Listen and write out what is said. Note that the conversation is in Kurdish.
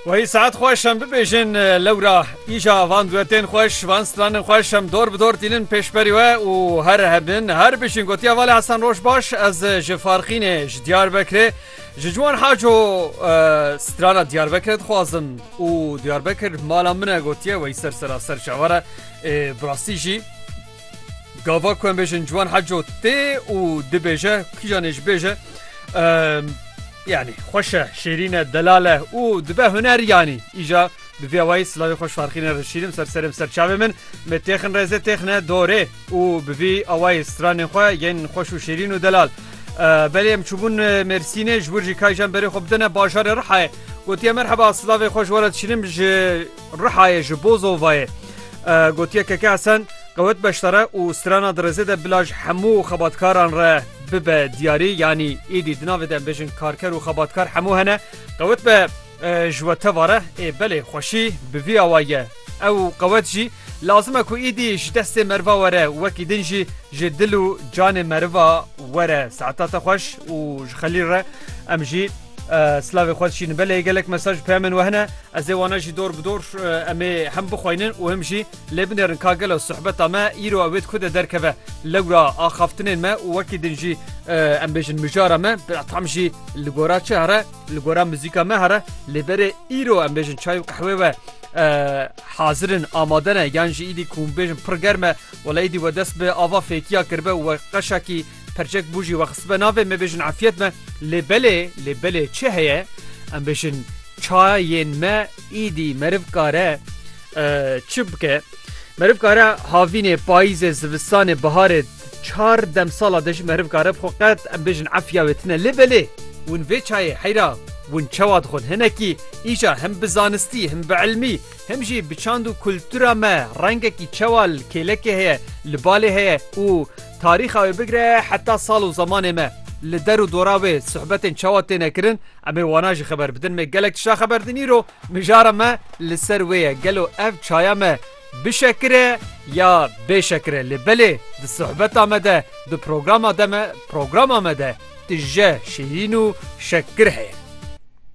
Wayî saet xweş em bibêjin lewra îja van duetên xweş van stranên xweş em dor bi dor tînin pêşberî we û here hebin her bijîn gotiya Valê Hesen roj baş ez ji Farxînê ji Diyarbekirê ji ciwan haco strana Diyarbekirê dixwazim û Diyarbekir mala min e gotiye weyî ser seraser çavar e birastî jî Gava ku em bêjin ciwan heco tê û dibêje kîjan ê ji bêje yanî xweş e şêrîn e delal e û dibe huner yanî îja bi vê wayî silavê xweş farxîne rişîrim ser serê ser çavê min me têxin rêzê têxine dorê û bi vî awayî stranên xwe yên xweş û şêrîn û delal belê em çûbûn mêrsînê ji wir jî kayjan berê xwe bidine bajarê rihayê gotiye merheba silavê xweş were dişînim ji Rihayê ji bo Zovayê gotiye Keke Hesen qewet beşdare û strana di rêzê de bila ji hemû xebatkaran re bibe diyarî yanî êdî di navê de em bêjin karker û xebatkar hemû hene qewet be ji we teva re ê belê xweşî bi vî awa ye ew qewet jî lazim e ku êdî ji destê meriva were wekî din jî ji dil û canê meriva were saeta te xweş û ji xelîl re em jî Silavê xwe dişînin. Belê gelek mesaj peyamên we hene. Ez ê wana jî dor bi dor em ê hem bixweynin û hem jî lê binêrin ka gelo sohbeta me îro ew ê di ku de derkeve. Lewra axaftinên me û wekî din jî em bêjin mijara me bi tam jî li gora çi here li gora muzîka me here lê berê îro em bêjin çay û qehwê we hazirin amade ne yan jî îdî ku bêjin pir germe wela îdî we dest bi ava fêkiya kirbe we qeşakî Perçek bû jî we xistbe navê me bêjin efyet me lê belê lê belê çi heye em bêjin çayên me îdî meriv kare çi bike meriv kare havînê payîzê zivistanê biharê çar dem sala de jî meriv kare bi xwe qet em bêjin efya wê tine lê belê hûn vê çayê heyra hûn çawa dixwin hinekî îşa him bi zanistî him bi elmî Him jî bi çand û kultura me rengekî çewa li kêlekê heye, li balê heye û tarîxa wê bigire heta sal û zemanê me. Li der û dora wê suhbetên çawa têne kirin em ê wana jî xeber bidin. Me gelek tişta xeber din îro mijara me li ser wê ye. Gelo ev çaya me bi şekir e ya bê şekir e. Lê belê di suhbeta me de di programa de me programa me de tije şîrîn û şekir heye.